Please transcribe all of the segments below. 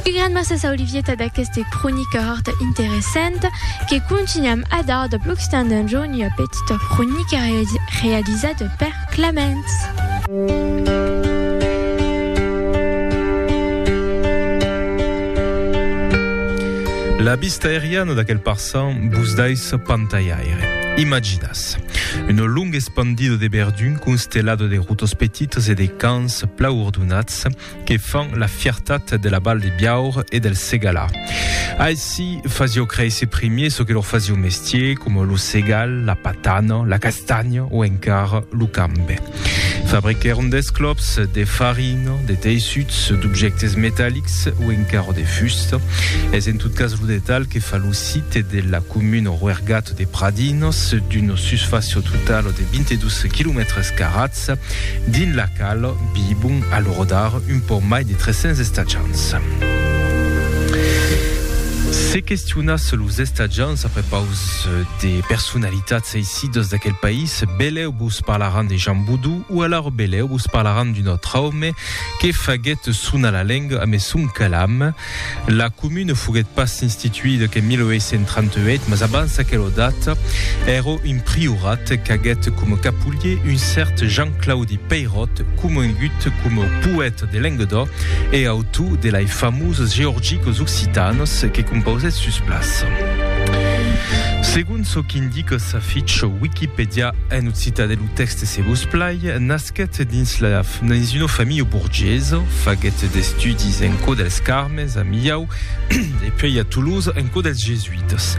Un gran mercés a Olivieta d'aqueste cronica horta interessanta que contunham a dar dab l'occitan d'un jorn ua petita cronica realizada per Claments. La vista aeriana d'aquel parçan vos daissa pantalhaire. Imaginatz. Una longa espandida de verdun constellada de rotas petitas e de camps plau ordonats que fan la fiertat de la Val de Biaur e del Segala. Aici fasio créisser primier ce que lor fasio mestier, coma lo segal, la patana, la castanya o encara lo cambe. Fabriquèron d'esclops, de farina, de teissuts, d'objèctes metallics o encara de fusta. Es en tot cas lo detalh que fa lo site de la comuna Roergat de Pradinas, d'una susfàcia totala de 22 quilomètres carats, Estacians, dins la qual vivon a l'ora d'ara un pauc mai de 300 estacians. Se questionatz los estacians a prepaus de personalitats eissidas d'aquel país, belèu vos parlaràn de Jean Boudou o alara belèu vos parlaràn d'un autre òme que faguèt sonar la lenga amé son calam, La comune foguèt pas instituida qu'en 1838, mas abans aquela data, èra un priorat qu'aguèt coma capulhier un cèrt Jean-Claudi Peyrot, comongut coma poèta de Lenguedoc e autor de lai famoses Georgiques occitanes que compausèt sus plaça. Segon çò qu'indica sa ficha Wikipèdia en occitan e lo tèxte se vos plai, Nasquèt dins la dins una familha borgesa, faguèt d'estudis en Cò dels Carmes, a Milhau, e puèi a Tolosa, en Cò dels Jesuitas.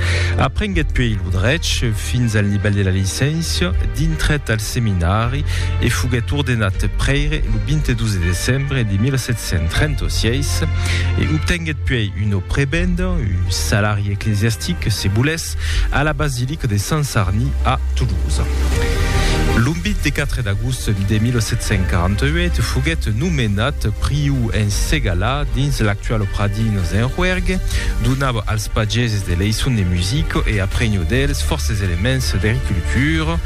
Aprenguèt puèi lo drech fins al nivèl de la licéncia, dintrèt al seminari e foguèt ordenat prèire lo 22 de decembre de 1736 e obtenguèt puèi una prebenda, un salari eclesiastic, se volèsse. Cruèlhas, a la basilica de Sant Sarni a Toulouse. Lo 24 d'agost de 1748 foguèt nomenat priu en Segalà, dins l'actual Pradines en Rouergue, donava als pageses de leiçons de musica e aprenhó dels fòrces elements d'agricultura.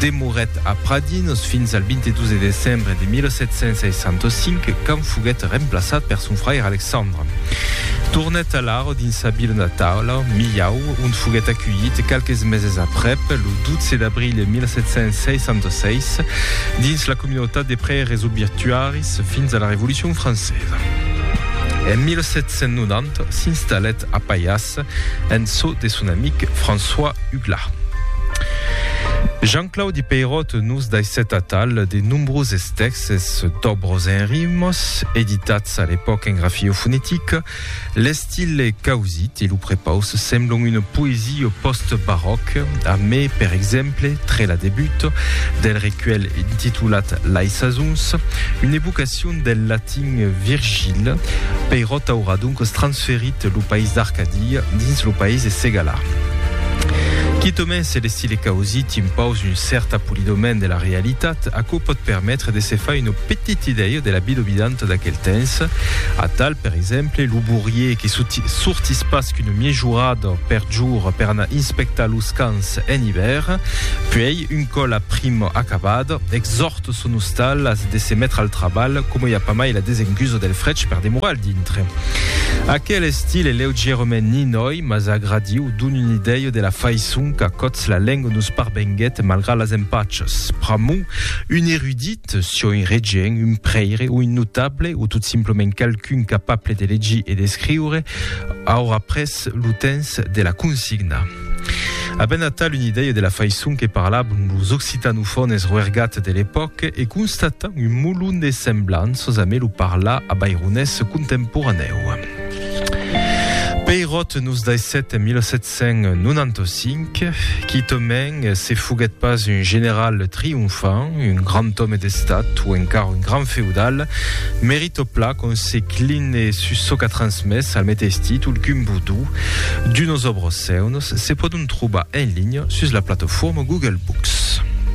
Demorèt a Pradines fins al 22 de decembre de 1765 quand foguèt remplaçat per son fraire Alexandre. Còrre. Tornèt alara dins sa vila natala, Milhau, ont foguèt aculhit qualques meses aprèp, lo 12 d'abril 1766, dins la comunautat de prèires obiertuaris fins a la Revolucion francesa. En 1790 s'installèt a Paiàs en çò de son amic François Hugla. Jean-Claudi Peyrot nos daissèt atal de nombroses tèxts, Ses dobros en rimos, editats a l'epòca en grafio fonetic, l'estile causit e lo prepaus semblon una poesia pòst-baròc, a mai, per exemple, tre la debut del recuèlh intitulat Lai sasons, una evocacion del latin Virgil, Peirot aurà doncas transformat transferit lo país d'Arcadia dins lo país de Segala. Quitament se l'estile causi t'impaus un cèrt apolidament de la realitat, aquò pòt permetre de se far una petit idèia de la bidobidanta d'aquel temps. Atal, per exemple, lo bourier que sortís pas qu'una miejorada per jorn per anar inspectar los camps en ivèr, puèi, Un còl aprim acabat, exòrt son ostal as de se metre al trabalh, coma i a pas mai la desenguso del frech per demorar al dintre. Aquel estil e leugièrement ninòi mas agradiu, don un idèio de la faiçon qu'a còts la lenga nos parvenguèt malgrat las empachas. Pr'amor, un erudit, sió un regent, un prèire o un notable, o tot simplement qualqu'un capable de legir e d'escriure, aurà pres lo temps de la consignar. A ben atal un idèia de la faisson que parlavan los occitanofones roergats de l'epòca e constatan un molon de semblanças amé lo parlar a baironés contemporanèu. Peirot nos daissèt en 1795 quitament se foguèt pas un general triomfant, un grand òme d'estat o encara un grand feudal, Tot plan quand se cline sus çò qu'a transmés al meteis títol qu'un vodú d'unos òbros seuns, se pòdon trobar en linha sus la plataforma Google Books.